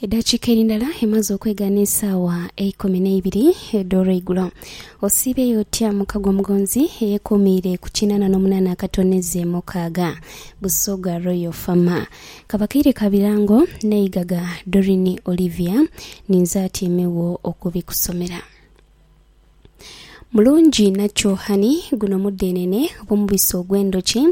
Edhakiika eri ndala emaze okwegaana esaawa eikumi n'eibiri edh'olweigulo. Osiibyeyo otya muka gw'omugonzi eyekuumiire ku kinaana n'omunaana akatoneeze mukaaga? Busoga Royal Farmer. Ka bakaire ka birango n'eigaga Doreen Olivia ninze atyaimegho okubikusomera. Mulungi inha kyohani guno mudhenene oba omubisi ogw'endhoki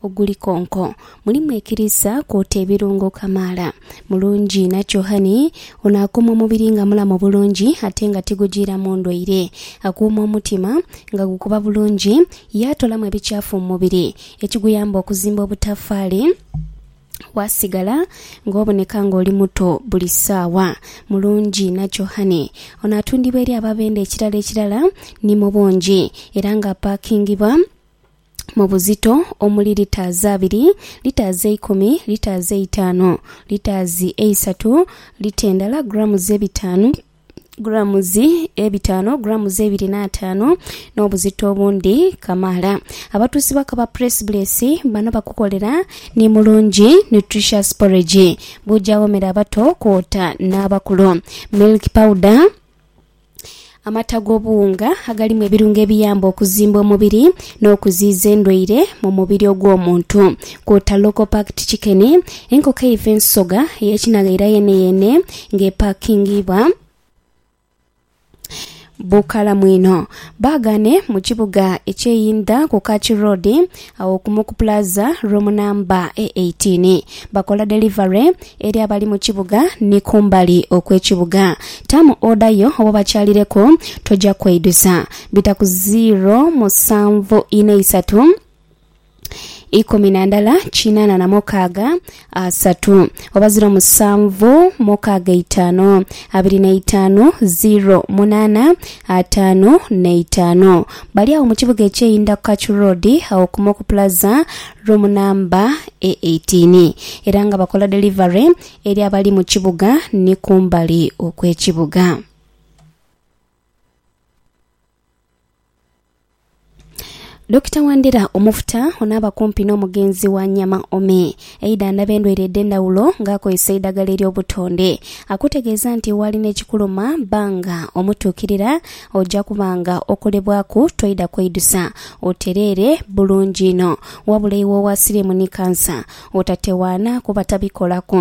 oguli konko. Mulimu ekiriisa kwota ebirungo kamaala. Mulungi inha kyohani ono akuuma omubiri nga mulamu bulungi ate nga tigujiiramu ndwaire. Akuuma omutima nga gukuba bulungi yaatolamu ebikyafu mu mubiri ekiguyamba okuzimba obutafaali. Waasigala ng'oboneka ng'oli muto buli saawa. Mulungi nakyo hhani. Ono atundibwa eri ababenda ekirala ekirala ni mu bungi era ng'apaakingibwa mu buzito omuli litaazi abiri, litaazi eikumi, litaazi eitaanu, litaazi eisatu, lita endala, grammes, ebitaanu, gulaamuzi ebitaanu, gulaamuzi ebiri n'ataanu n'obuzito obundi kamaala. Abatuusi bakaba Press Bless bano bakukolera ni mulungi nutritious porridge buja awomera abato kwota n'abakulu. Milk powder amata g'obuwunga agalimu ebirungo ebiyamba okuzimba omubiri n'okuziiza endwaire mu mubiri ogw'omuntu kwota Leukopact chicken, enkoko eiva ensoga eyekinaghaira yeeneyeene nga epakingiibwa bukalamu inho. Baagaane mu kibuga eky'eyindha ku Kachi Road agho kumu ku plaza room namba e eighteen. Bakola delivery eri abali mu kibuga ni kumbali okw'ekibuga. Taamu oda yo oba obakyalireku toja kweidusa. Bita ku ziiro musanvu inha isatu ikumi na ndala kinana na mukaaga asatu oba ziiro musanvu mukaaga eitaanu abiri na itaanu ziiro munana ataanu na itaanu. Bali agho mu kibuga ekyeyindha ku Kachu Road agho ku Moku Plaza room namba e eighteen era nga bakola delivery eri abali mu kibuga ni kumbali okwekibuga. Dokita Wandera Omufuta ono aba kumpi n'omugenzi wa Nyama Ome eidhandhaba endwaire edh'endhawulo nga akozesa eidhagala ery'obutonde. Akutegeeza nti waalina ekikuluma bba nga omutuukirira oja kuba nga okolebwaku toidha kweidusa otereere bulungi inho. Wabula iwe owa siriimu ni kansa otatewaana kuba tabikolaku.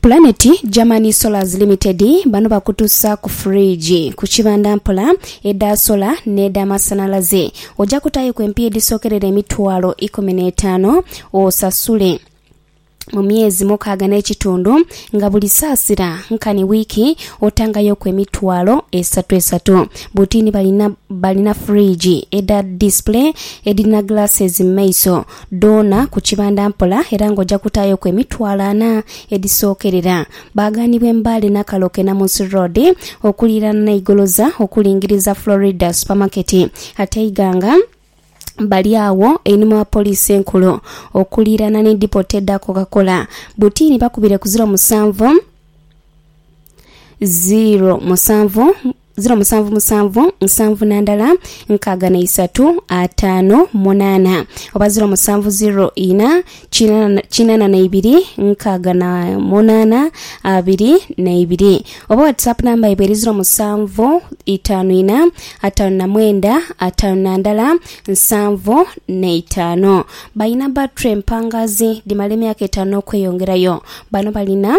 Pulaneti Germany Solars Limited bano bakutusa ku fridge ku kibanda mpola edha sola n'edha masanalaze. Oja kutayo ku empiya edhisokerera emitwalo ikumi n'etaano osasule mu myezi mukaaga n'ekitundu nga buli saasira nkani wiiki otangayoku emitwalo esatu esatu. Butini balina balina fridge edha display edhirina glasses mu maiso dhoona ku kibanda mpola era ng'oja kutaayoku emitwalo ana edhisookerera. Baagaanibwa e Mbale, Nakaloa ke Namunsi Road okuliiraana n'e Igoloza okulingiriza Florida Supermarket ate e Iganga bali agho einhuma wa Poliisi Enkulu okuliiraana ni Depot edha Coca-Cola. Butiini bakubire ku ziro musanvu, ziro musanvu. ziro musanvu musanvu nsanvu na ndala nkaaga na isatu ataano munaana oba ziro musanvu ziro ina kinana kinana na ibiri nkaaga na munaana abiri na ibiri oba whatsapp namba yaibwe eri ziro musanvu itaanu ina ataano na mwenda ataano na ndala nsanvu na itaano balina battery empangaazi dhimala emyaka etaano okweyongerayo bano balina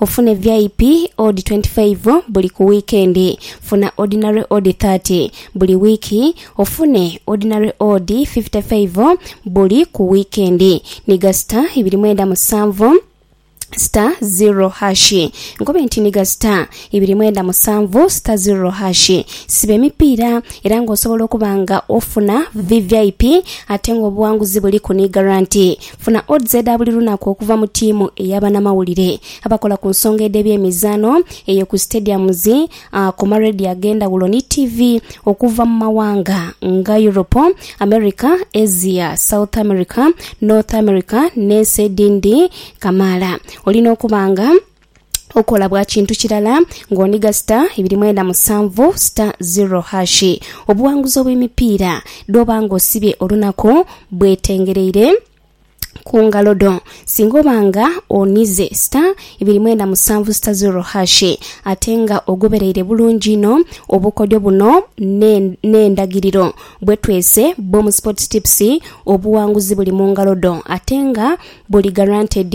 Ofune VIP odi twenti faivu buli ku wiikendi. Funa odinare odi thati buli wiiki. Ofune odinare odi fifite faivu buli ku wiikendi. Nhiga sita ibiri mwenda musanvu sita zirro hashi. Nkobe nti nhiga sita ibiri mwenda musanvu sita zirro hashi. Siba emipiira era nga osobola okuba nga ofuna VVIP ate nga obuwanguzi buliku ni garanti. Funa odds edha buli lunaku okuva mu tiimu eya banamawulire abakola ku nsonga edh'ebyemizaano eyo ku stadiums, ku ma radio ag'endhawulo ni ttivi okuva mu mawanga nga Europe, America, Asia, South America, North America n'ensi edhindi kamaala. Olina okuba nga. okola bwa kintu kirala ng'oniga sita ibiri mwenda musanvu sita ziro hashi. Obuwanguzi obw'emipiira dh'oba ng'osibye olunaku bwetengereire ku ngalo dho. Singa oba nga onize sita ibiri mwenda musanvu sita ziro hashi ate nga ogobereire bulungi inho obukodyo buno n'endagiriro bwe twese bw'omu Sports Tips, obuwanguzi buli mu ngalo dho ate nga buli guaranteed.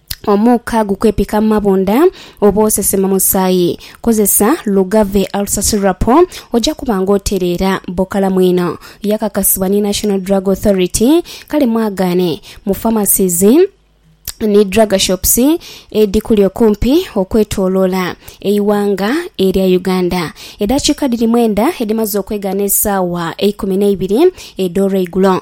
Omuuka gukwepika mu mabunda oba osesema musaayi, kozesa Lugave Ulcer Syrup oja kuba nga otereera. Bukalamu inho. Yakakasibwa ni National Drug Authority kale mwagaane mu pharmacies ni drugshops edhikuli okumpi okwetoloola eighanga erya Uganda. Edhakiika dhiri mwenda edhimaze okwegaana esaawa eikumi neibiri edh'olweigulo.